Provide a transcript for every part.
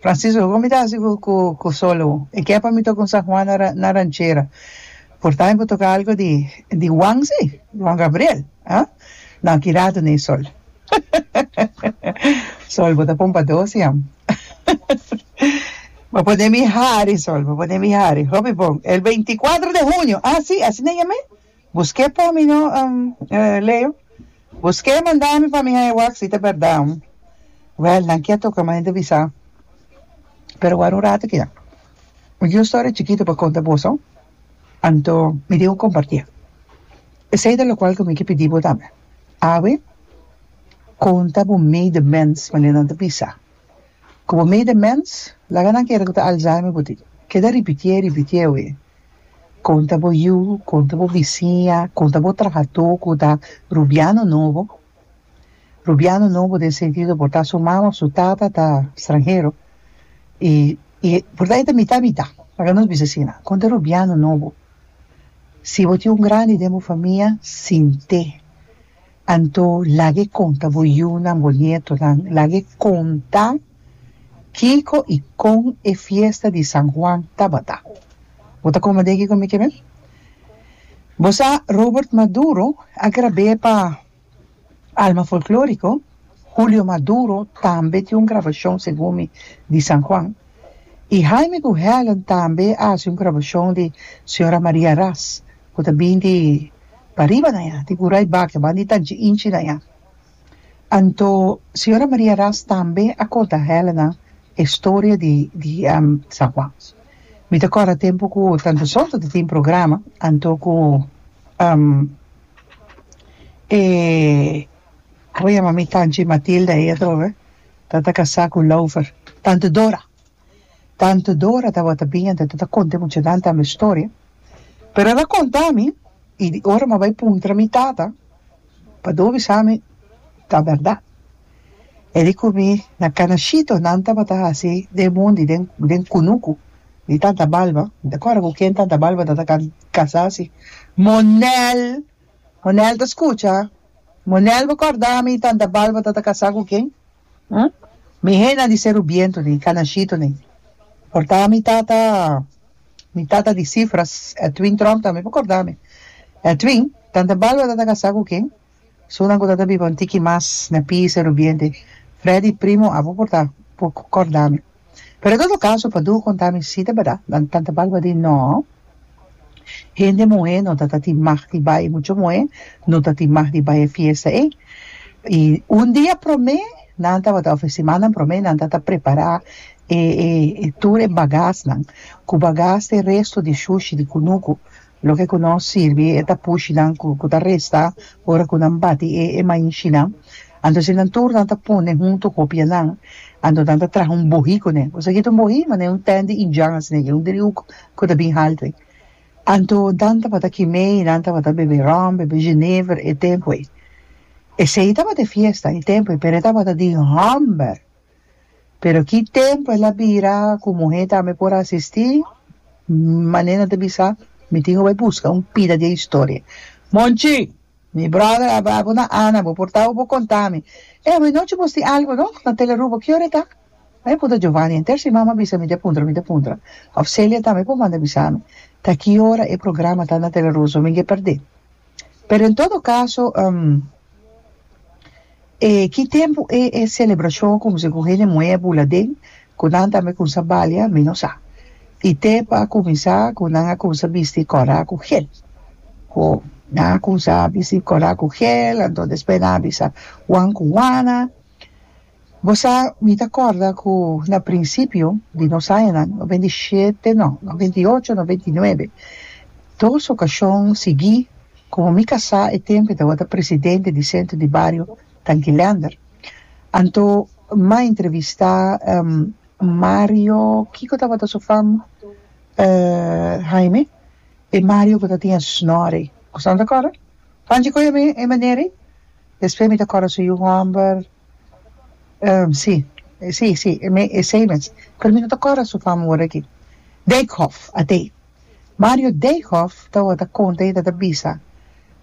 Francisco, Con mi ta haci cu solo? E ke pa mi toca un San Juan na ranchera. Por tambe por toca algo di Juan si, Juan Gabriel, ha? No, aki ratu n'e sol. Sol, bo ta pon pa dos jam. Bo pone mi hari, Sol, bo pone mi hari. Hopi bon. El veinticuatro de junio. Ah si, asina yam'e? Bus ke por mi no um Leo? Bus ke manda mi pa mi haña wak si ta berdad um? Well nan kia toka mane ta bisa pero wara un rato kia mi tin un storia chikito pa konta boso anto mi dibu kompartia esei ta lokual ku mi ke pidi bo tambe awe konta bo medemens mane nan ta bisa ku bo medemens laga nan kere ku ta alzheimer bo tin keda ripitié ripitié awe. Kon ta bo yu, kon ta bo bisiña, kon ta bo trahadó ku ta rubiano nobo? Rubiano nobo den sentido por ta su mama o su tata ta stranhero i i por ta e ta mitá mitá, pasobra nos bisa asina. Kon ta rubiano nobo? Si bo tin un grandi den bo famia, sint'é. Anto lag'e konta bo yunan, bo nietonan, lag'e konta kiko i kon e fiesta di San Juan tabata. Bo ta kome den kiko mi ke men? Bo sa Robert Maduro a grab'é pa Alma Folklóriko? Julio Maduro tambe tin un grabashon segun mi di San Juan. I Jaime ku Helen tambe a hasi un grabashon di Señora Maria Ras ku ta bin di pariba na ya, di Gurai Bakia, ban di Tanchi Inchi na ya. Anto Señora Maria Ras tambe a konta Helen e storia di di San Juan. Mi ta kòrda tempu ku tantu Soto ta tin programa, anto ku e, komo yama mi Tanchi Matilda e atrobe. Ta ta casá cu Lover. Tante Dora. Tante Dora tabata bin ante ta ta conta e muchanan tambe historia. Pero ela conta mi y di ora mi a bay puntra mi tata pa do bisa mi ta berdad. E di cu mi na Canashito nan tabata haci den mundi den den cunucu di tanta balba. Mi ta corda cu ken tanta balba ta ta casá si. Monel! Monel ta scucha, Monel bo corda mi tanta bal bo ta ta casa cu ken? Hm? Mi hena di Serubiento ne, Canashito ne. Porta mi tata, mi tata di cifras, Edwin Tromp tambe bo corda mi. Edwin, tanta bal bo ta ta casa cu ken? Su nan cu ta ta biba un tiki mas na P. Serubiente, Freddy primo abo porta bo corda mi. Pero e dado caso pa duo conta mi si ta berdad nan tan ta balbadin no hende muhe no ta ta tin mag di bay mucho muhe no ta tin mag di bay e fiesta ey y un dia prome nan tabata of e simannan prome nan ta ta prepara e e tur e bagas nan cu bagas e resto di shushi di cunucu Loke ku no sirbi e ta pushi nan ku ku ta resta ora ku nan bati e e mainshinan. Anto si nan tur nan ta pone huntu hopianan, anto nan ta traha un bohí kuné. Bo sa kit un bohí? Manera un tènt di indjan asina i e, un driuk ku ta bin haltu ei. Anto nan tabata kim'é i nan tabata bebe ròm, bebe jenever e tempu ei. Esei tabata e fiesta e tempu ei, pero e tabata di hòmber. Pero ki tempu el a bira ku muhé tambe por asistí? Mané nan ta bisa, mi tin ku bai buska un pida di e historia. Monchi! Mi bròder a bai bo na Ana, bo por tau bo konta mi. Ey, bo e nochi bo sti algu, no? Na Telerubo. Ki ora e ta? Mi a puntra Giovanni henter si mama a bisa mi di a puntra, mi di a puntra. Òf Celia tambe por manda bisa mi ta ki ora e programa ta na Teleruso, mi ke perdé. Pero en todo caso e ki tempo e e celebracion cuminsa cu hende muey a bula den cu nan tambe cuminsa balia mi no sa y te pa a cuminsa cu nan a cuminsa bisti cora cu gel cu nan a cuminsa bisti cora cu gel anto despues nan a bisa wan cu wana Bo sa, mi ta kòrda ku na prinsipio di nos añanan, noventa i shete no, noventa i ocho, noventa i nuebe, dos okashon siguí, komo mi kasá e tempu i tabata presidente di Sentro di Bario Tanki Leander, anto m'a entrevistá Mario, kiko tabata su fam, Haime, e Mario ku ta tin e snòre. Kusnan ta kòrda? Panchi kohe mi e manera ei? Despues mi ta kòrda su yu hòmber, Um, si. E si, si. E me, esei mes. Pero mi no ta corda su fama ora aki. Dijkhof, at'e. Mario Dijkhof tabata conta y e tabata bisa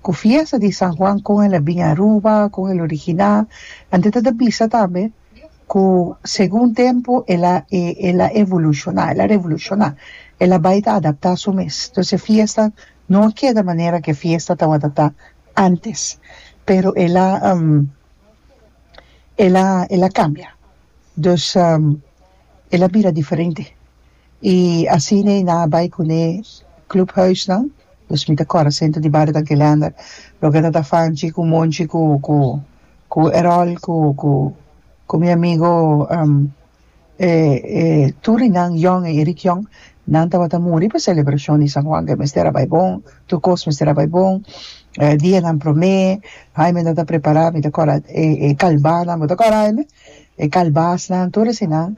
cu fiesta di San Juan con el a bin Aruba, con el a origina. Anto e tabata bisa tambe cu segun tempo el a, e, el a evoluciona, el a revoluciona. El a bay ta adapta su mes. Entonces e fiesta no a keda manera cu e fiesta tabata ta antes. Pero el a, um. el a el a cambia dus el a bira diferente y asina e na bay cu ne club huis nan dus mi ta core senter di barrio Tanki Leander loke nan ta fanchi cu Monchi cu cu cu Erol cu cu cu mi amigo E tur di nan, Jon i Eric Jon, nan tabata muri pa selebrashon di San Juan ke mester a bai bon, tur kos mester a bai bon, dianan promé, Haime ta ta prepará, mi ta kòrda e kalbánan, bo ta kòrda Haime? e kalbasnan, tur eseinan,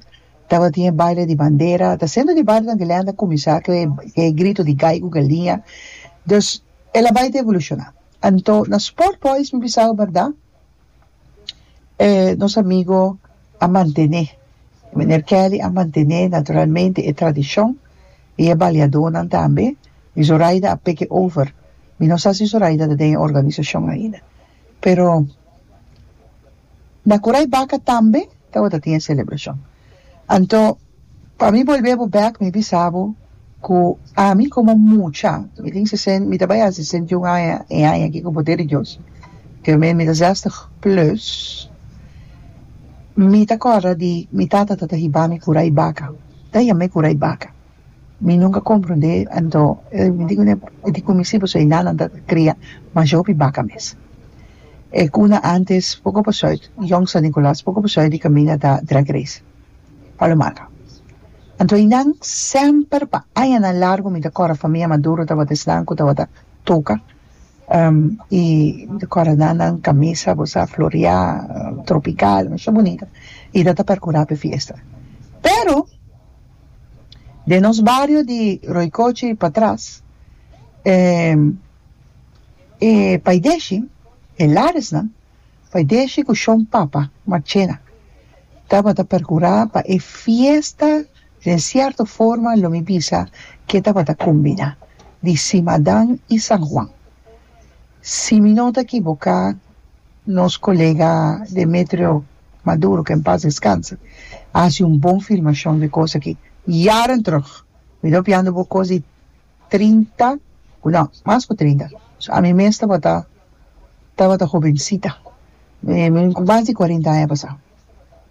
tabatin e baile di bandera, ta sento di barionan di Lenta kuminsá ku e grito di gai ku galiña, dus el a bai ta evolushoná. Anto na Sport Boys mi bisa ku bèrdat. eh nos amigo a mantené Miner Kelly a mantené naturalmente e tradicion y e baleadornan tambe y Zoraida a take over mi no sa si Zoraida ta den e organisacion ainda pero na Korai Baka tambe tabata tin e celebracion Anto pa mi bolbe bo bek mi bisa bo ku ami komo mucha mi tin sesen mi ta bai a sesenta i un aña e aña aki ku poder di Dios ke men mi ta zestig plus mi ta kòrda di mi tata ta ta hiba mi kura i baka ta yam'e kura i baka. Mi nunka komprondé anto mi di kuné e di kuminsi e pasobra e nannan ta kria mas hopi baka mes. E kuna antes poko pasobra Yònk San Nikolas poko pasobra di kaminda ta Drag Race Palomar. Anto e nan semper pa añanan largu mi ta kòrda famia Maduro tabata esnan ku tabata toka i mi ta kòrda nannan kamisa ku sa floriá tropikal masha bunita i ta ta perkurá p'e fiesta. Pero. Den nos bario di Roikochi pa tras, e e paideshi, e laresnan, paideshi ku shon papa, marchena, tabata perkurá pa e fiesta den sierto forma lo mi bisa ku e tabata kombiná di Simadan i San Juan. Si mi no ta ekiboká. Nos colega Demetrio Maduro, que en paz descanse, a haci un bon filmacion di cos aki jaren terug. Mi ta opiando bo cos di trinta, no, mas cu trinta, ami mes tabata, tabata hobencita, cu mas di cuarenta aña pasa,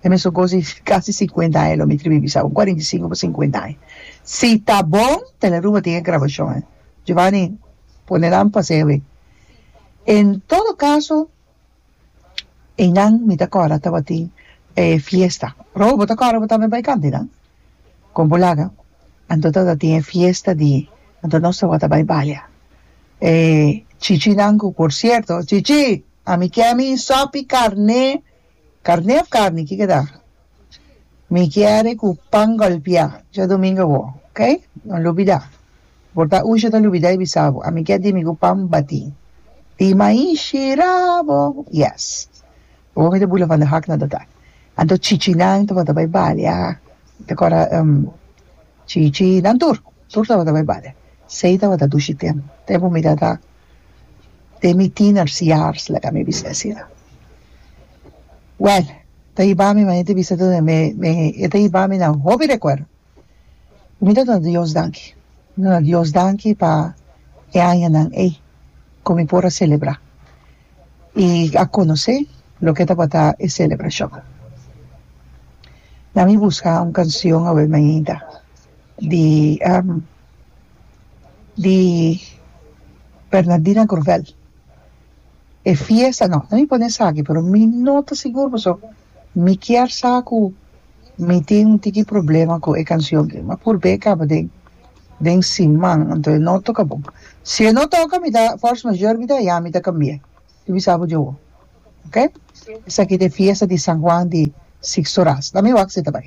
e mesun cos di casi cincuenta aña lo mi tribi bisa, un cuarenta y cinco pa cincuenta aña. Si ta bon, Teleruba tin e grabacionnan. Giovani, pone nan pa hacer a ver. En todo caso einan mi ta cora tabatin e fiesta probo bo ta cora bo tambe bay canta einan con bo laga anto tabatin e fiesta di anto nos tabata bay baya e chichi nan cu por cierto chichi ami kier mi sopi carne carne of carni kikeda. Mi kiere cu pan golpia djadomingo bo ok no lubida por ta usha ta lubida y bisa bo ami kier dimi cu pan bati di mai shira bo yes bo mi ta bula van de hak na dota anto chichi nan tabata bay balia ta cora chichi nan tur tur tabata bay balia sey tabata dushi tempo tempo mi tata te mi tiener years like a mi bisa asina well ta hiba mi mane ta bisa tunda me me e ta hiba mi nan hopi recuerdo y mi ta duna Dios danki mi ta duna Dios danki pa e añanan ey cu mi por a celebra y a conoce loke tabata e celebracion nan mi busca un cancion awe mainta di di Bernardina Grovel e fiesta no mi pone esaki pero mi no ta sigur paso mi kier sa cu mi tin un tiki problema cu e cancion mi a purba e caba den den siman anto no toca bon si e no toca mi ta force mayor mi ta ya mi ta cambia si mi sa bo dje awo ok esaki ta e fiesta di San Juan di Sixto Ras la mi wak si ta bay.